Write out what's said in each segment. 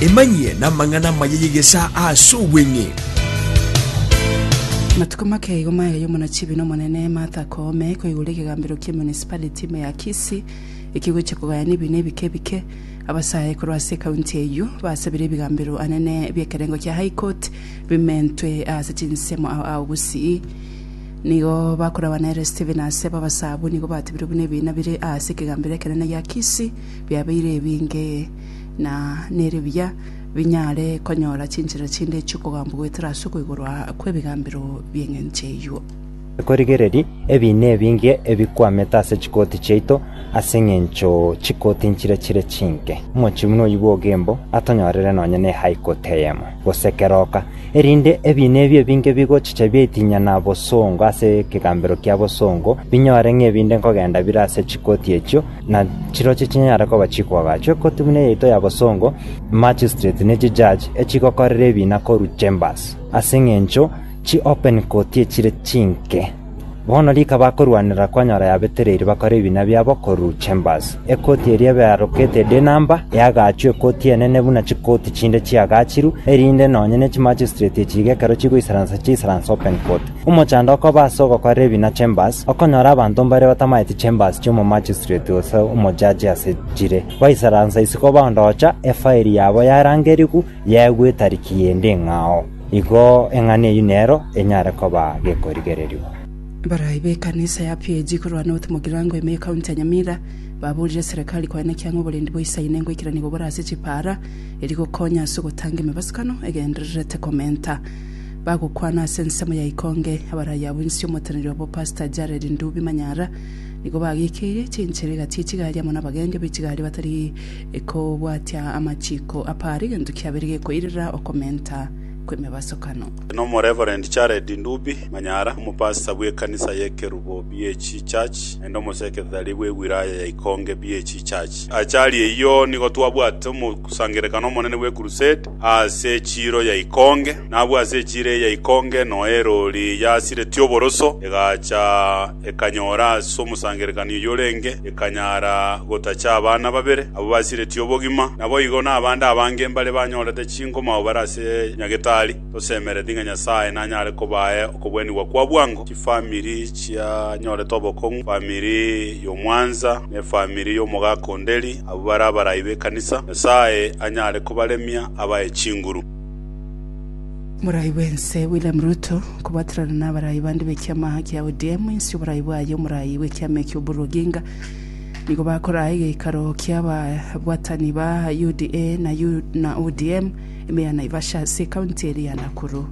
Emanyie namang'ana amaya y'egesaa ase obweng'e. Amatuko make igo maya y'omona chibi na Omonene Martha Koome koigora ekegambero kie municipality ime ya Kisii ekegochia kogayana ebiina ebike ebike. Abasae korwa ase ekaunti eyio basabire ebigambero anene biekerengo kia High Court bimentwe ase chinsemo ao ao bosii nigo bakorabana ere Stephen Asebo abasaabwo nigo batebirwe buna ebiina bire ase ekegambero ekenene gia Kisii biabeire ebinge, na nere biya binyare konyora chinchera chinde chi'okogambwa goetera ase okwa igoro kw'ebigambero bi'engencho eyio. Tikorigereria ebiina ebinge ebikwamete ase chikoti chiaito ase engencho chikoti nchire chire chinke. Omochie buna oyio bw'ogembo atonyorere nonya ne high court eyemo, gose keroka, erinde ebiina ebi ebinge bigochicha biaitinyana bosongo ase ekegambero kia bosongo, binyore ng'a ebinde nkogenda bire ase chikoti echio, na chirochio chinyare koba chikoagachwe kotugwa neyaito ya bosongo, magistrate ne chijudge echigokorera ebina korwa chambers, ase engencho chi open court echire chinke. Bono rika bakorwanera kwanyora yabetereiri bakore ebina biabo korwa chambers. Ekoti eria ebearokete de number eagachwe ekoti enene buna chikoti chinde chiagachiru, erinde nonye ne chimagistrate echi iga ekero chigoisaransa chiisaranse open court. Omochando okoba ase ogokora ebi na chambers, okonyora abanto mbare batamaeti chambers chi'omomachistreti gose omojaji ase chire, baisaransa isiko baondoocha efairi yabo yarangerigwe yaegwa etariki y'ende eng'ao. Igo eng'ana eyio nero enyare koba gekorigererigwa. Barayi b'ekanisa ya PAG korwa North Mugirango ime y'ekaunti ya Nyamira baborire serekari koena ekiang'o oborendi bwa Isaine ngoikerania gobore ase chipaara, erio gokonya ase ogotanga emebasukano egendererete komenta. Bagokwana ase ensemo ya ikonge abaraya abwo inse omoteneneri obo Pastor Jared Ndubi Manyara nigo bagekeire chinchera egati echigari amo nabagenga bechigari batari kobwatia amachiko apare egento kiabere gekoirera okomenta kwemebasokano. Nomo Reverend Jared Ndubi Manyara, omopastor bw'ekanisa y'ekerubo BAG Church naende omoseketari bw'ewiraya ya ikonge BAG Church. Achari eyio nigo twabwate omosangerekano omonene bwe crusade aase echiiro ya ikonge, na abwo ase echiiro eye ya ikonge noe eroori yasiretie oboroso, egacha ekanyora ase omosangererekani oyio orenge, ekanyara gotacha abana babere abwo basiretie obogima. Naboigo nabande abange mbare banyorete chinkuma abwo bare ase Nyagetari. Tosemeretie ng'a Nyasae nanyare kobae okobwenigwa kwa bwango chifamiri chianyorete obokong'u, efamiri y'omwansa, na efamiri y'omogaka o Nderi, Abwo bare abarai b'ekanisa, Nyasae anyare kobaremia abae chinguru. Morai bw'ense William Ruto kobwaterana nabarai bande b'ekiama kia ODM inse y'oborai bwaye Omorai bw'ekiama ekio Oburu Oginga nigo bakoraa egeikaro kiababwatani ba UDA na ODM ime ya Naivasha ase ekaunti eria ya Nakuru.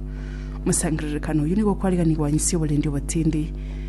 Omosangererekano oyio nigo okwariganigwa inse y'oborendi obotindi